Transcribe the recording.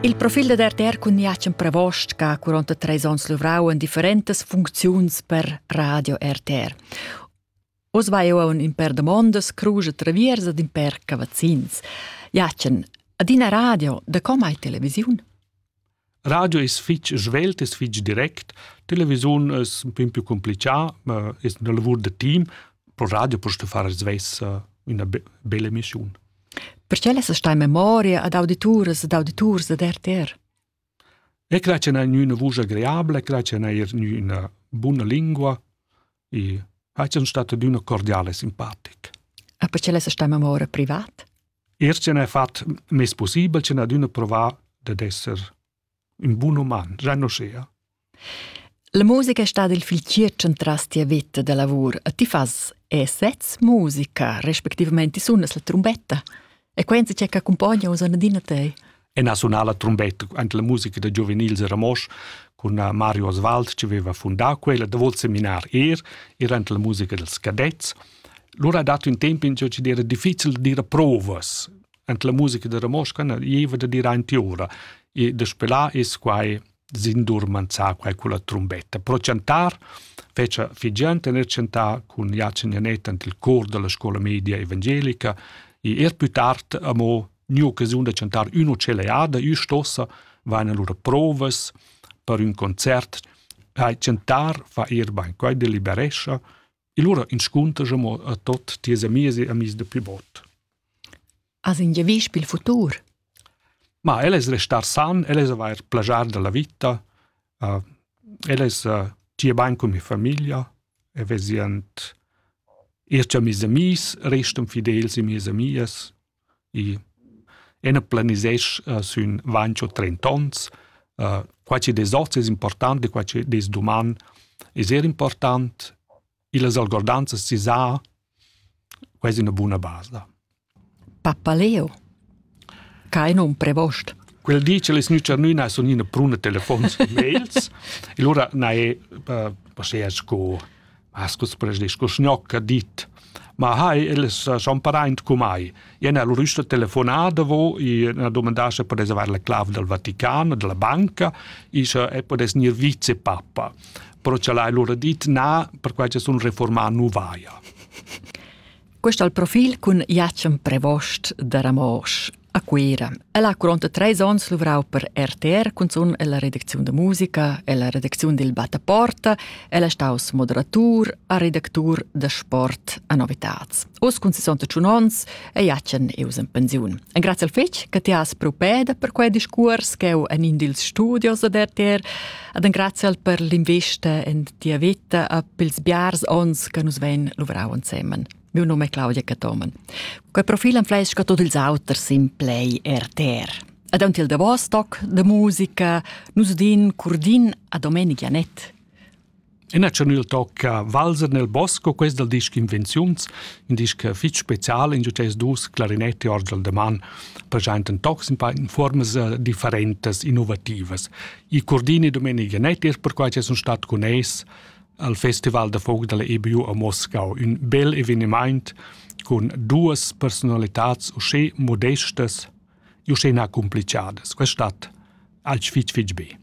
Il profil da RTR cun Jacen Pravost che ha 43 onns luvrau en differentas funcziuns per Radio RTR. Oz vai eu un per domondas, cruge traviers ed in per cavazzins. Jacen, ad ina radio, da com hai televisiun? Radio es fich svelt, es fich direct, televisiun es ün pin più complichà, ma es üna lavur da team. Pro radio post far svess üna bella emissiun. Perché lessa stai memoria ad audituras ed auditurs ad RTR? E cre che n'ha üna vusch agreabile, cre che n'ha eir üna buna lingua, e ha schon stato d'una cordiale simpatic. Ah, perché l'è sta memoria privat? Er ce n'è fatto mes possibile ce n'ha d'una provare ad essere un buon uman, già non sia. La musica è stata il fil centras tia vita da lavor. E ti fas e sez musica, respectivamente sunas la trombetta? E quei che accumpogna uss adina tei. E na sunala trombetta ante la musica da giuvenils a Ramos cun Mario Oswald che aveva fundato quella da vol seminar er ir ante la musica dels cadets. Lura ha dato un tempo in ciò che era difficile di dire provas ante la musica da Ramos che ne ieva da dire anti ora e de spelar es quai sin dur manzar quai culla trumbetta. Pro chantar fece figiant e chantar cun Jacin Janet ant il cor della scuola media evangelica e er più tard amo new occasiun da chantar uno celeada ü stossa vaina lura provas per ün concert hai chantar fa er bain quai deliberescha E lura inscunter mo a tot ties amis e amis de pli bot. As in giavisch pil futur? Ma el es restar san, el es avair plagiar della vita, uh, el es uh, tie bain con mi familia, e vesient ir amis amis, restan fidels e mies amias, I ena planisesch uh, sün vantg o trent ons. Uh, qua chi des hoz es important e qua chi des duman es eir important. Illas algordanzas si sa quasi una buna base. Da. Papaleo. Kein un prevost. Quel dice les nücernüna sun ina pruna telefons mails. e lura na è uh, posea sco Has culs presdis co sgnocca dit. Ma hai, el sa champaraint cu mai. Ien al rüsta telefonà davo, i na domandascha per reservar la clav dal Vatican, della banca, ischa e podes gnir vicepappa. Però cha l'hai lura dit na, perquai cha sun reformà nu vaja. Quest al profil cun Jacem Prevost da Ramosch a Cuira. El ha curonta treis onns luvrau per RTR cunzun ella redacziun da musica, ella redacziun dil Bataporta, el è staus moderatur a redactur da sport a Novitats. Oz cun 61 onns è Jacen eus in pensiun. En grazie al fetg che ti has propeda per quei discurs che eu en in dils studios ad RTR, ad en grazie al per l'investa en Tia vita a pils biars ons che nus vein luvrau ensemen. Miu num è Claudia Catomen. Quei profil enfleisca tot ils auters sin play RTR. Ad aunc il davos toc de musica, nus din curdin a Domenic Janet. Ina chanel tocca Valser nel bosco, quest dal disc Invenziuns, un disc fitg special in ces dus clarinetti orgel de man, presenta tocs in paia formas differentas, innovativas. Il Cordini Domenica Nettis perquai che sun stat cun eis al Festival da Folk dalla EBU a Moscau, un bel evenement con duas personalitats usche modestas e usche na complicadas. Questa stat alch fitch fitch be.